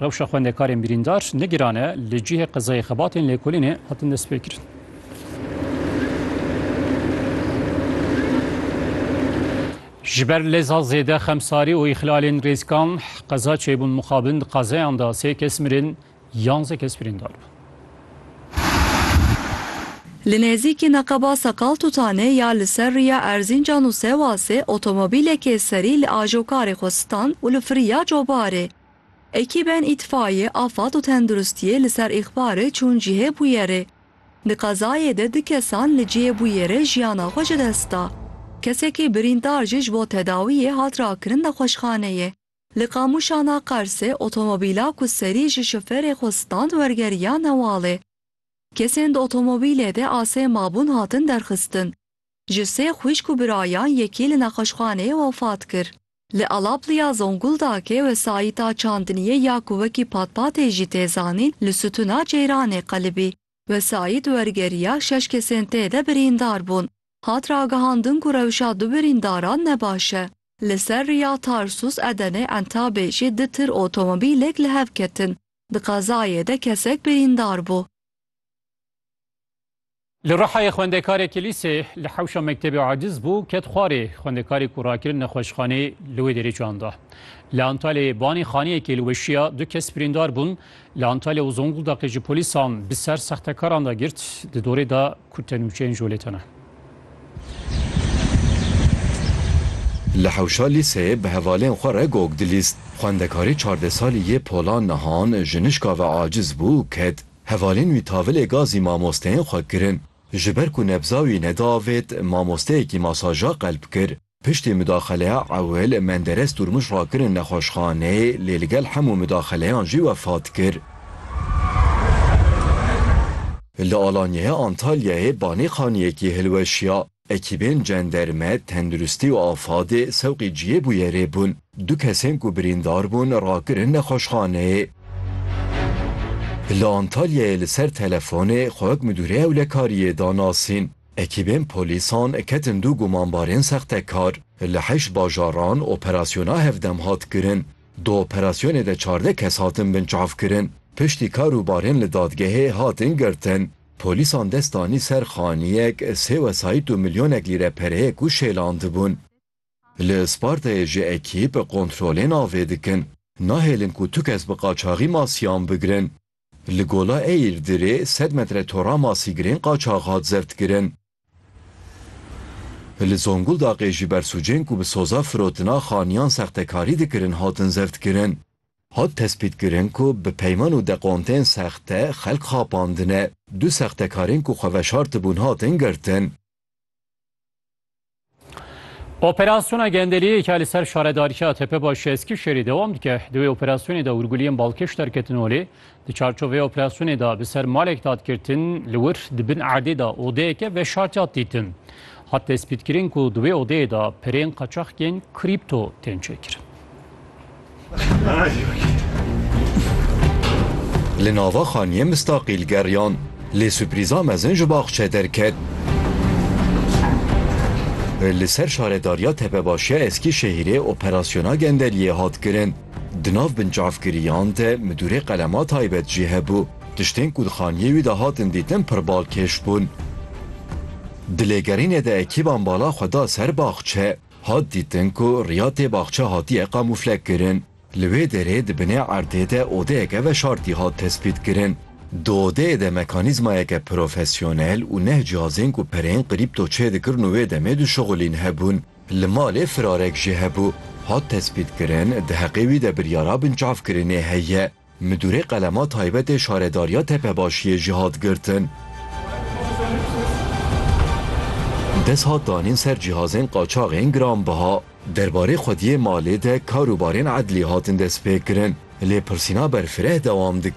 Rewşa xwendekarên birîndar ne giran e, li cihê qezayê xebatên lêkolînê hatin destpêkirin. Ji ber leza zêde xemsarî û îxlalên rêzkan qeza çêbûn mixabin di qazeyan de sê kes mirin, yanze kes birîndar bûn. Li nêzîkî neqeba Seqaltutanê ya li ser rûya Erzîncan û Sewasê otomobîlekê serî li ajokarê xwe stand û li firiya cobarê. Ekîbên Îtfaîyê, Afad û Tenduristîyê li ser îxbarê çûn cihê bûyerê. Di qezayê de du kesan li cihê bûyerê jiyana xwe ji dest da. Kesekî birîndar jî ji bo tedawîyê hat rakirin nexweşxaneyê. Li Qamûşana Qersê otomobîla ku serî ji şoferê xwe stand wergeriya Newalê. Kesên di otomobîlê de asê mabûn hatin derxistin. ji sê xwîşk û birayan yekî li nexweşxaneyê wefat kir. Li Alapliya Zonguldakê wesayîta çandiniyê ya ku wekî patpatê jî tê zanîn li Sitûna Ceyranê qelibî. Wesayît wergeriya şeş kesên tê de birîndar bûn. Hat ragihandin ku rewşa du birîndaran ne baş e. Li ser riya Tarsus, Edenê, Entabê jî du tir otomobîlek li hev ketin. Di qezayê de kesek birîndar bû. Li Rihayê xwendekarekî lîsê li hewşa mektebê aciz bû, ket xwarê. Xwendekarê ku rakirin nexweşxanê li wê derê can da. Li Antalyayê banê xaniyekê li weşiya, du kes birîndar bûn. Li Antalya û Zonguldaqê jî polîsan bi ser sextekaran da girt, di dorê de ku tenûçeyên jolê tene. Li hewşa lîseyê bi hevalên xwe re gog dilîst. Xwendekarê çardeh salî yê Pola Nihan ji nişka ve aciz bû, ket. Hevalên wî tavilê gazî mamosteyên xwe kirin. Ji ber ku nebza wî nediavêt, mamosteyekî masaja qelb kir. Piştî mudaxeleya ewil, Menderes Durmuş rakirin nexweşxaneyê, lê li gel hemû mudaxeleyan jî wefat kir. Li Alanyaya Antalyayê banê xaniyekî hilweşiya. Ekîbên cenderme, tenduristî û afadê sewqî cihê bûyerê bûn. Du kesên ku birîndar bûn rakirin nexweşxaneyê. Li Antalyayê li ser telefonê xwewek Midûrê Ewlekariyê da nasîn. Ekîbên polîsan ketin du gumanbarên sextekar. Li heşt bajaran operasyona hevdem hat kirin. Di operasyonê de çardeh kes hatin binçavkirin. Piştî kar û barên li dadgehê hatin girtin. Polîsan dest danî ser xaniyek sê wesayît û milyonek lîre pereyê ku şêlandibûn. Li Spartayê jî ekîp kontrolên avê dikin. Nahêlin ku tu kes bi qaçaxî masiyan bigirin. Li Gola Eîrdirê sed metre tora masîgirên qaçax hat zevtkirin. Li Zonguldaxê jî bersûcên ku bi soza firotina xaniyan sextekarî dikirin hatin zerdkirin. Hat tespîtkirin ku bi peyman û dekontên sexte xelk xapandine. Du sextekarên ku xwe veşartibûn hatin girtin. Operasyona gendeliyê ke li ser şaredariya Tepebaşê Eskişehirê dewam dike, di wê operasyonê de hûrguliyên Balkêş derketin holê. Di çarçovê operasyonê de bi ser malek dadgirtin li wir di bin erdê de odeyeke veşartiyat dîtin. Hat destpîtkirin ku di wê odeyê de pirên qaçaxkên krîpto tên çêkirin. Li nava xaniyê mistaqîl geriyan, lê suprîza mezin ji baxçe derket. Li ser şaredariya Tepebaşiya Eskîşehîrê operasyona gendeliyê hat kirin. Di nav binçavkiriyan de midûrê qelema taybet jî hebû. Tiştên ku di xaniyê wî de hatin dîtin pir balkêş bûn. Di lêgerînê de ekîban bala xwe da ser baxçe. Hat dîtin ku riyatê baxçe hatiye kamûflekirin. Li wê derê di binê erdê de odeyeke veşartî hat tespîtkirin. Di odeyê de mekanîzmayeke profesyonel û neh cihazên ku pereyên qrîpto çêdikirin û wê demê dişuxulîn hebûn. Li malê firarek jî hebû. Hat tespîtkirin, di heqê wî de biryara binçavkirinê heye. Midûrê qelema taybetê Şaredariya Tepebaşiyê jî hat girtin. Dest hat danîn ser cîhazên qaçaxên giranbiha. Derbarê xwediyê malê de kar û barên edlî hatin destpêkirin. Lêpirsîna berfireh dewam dike.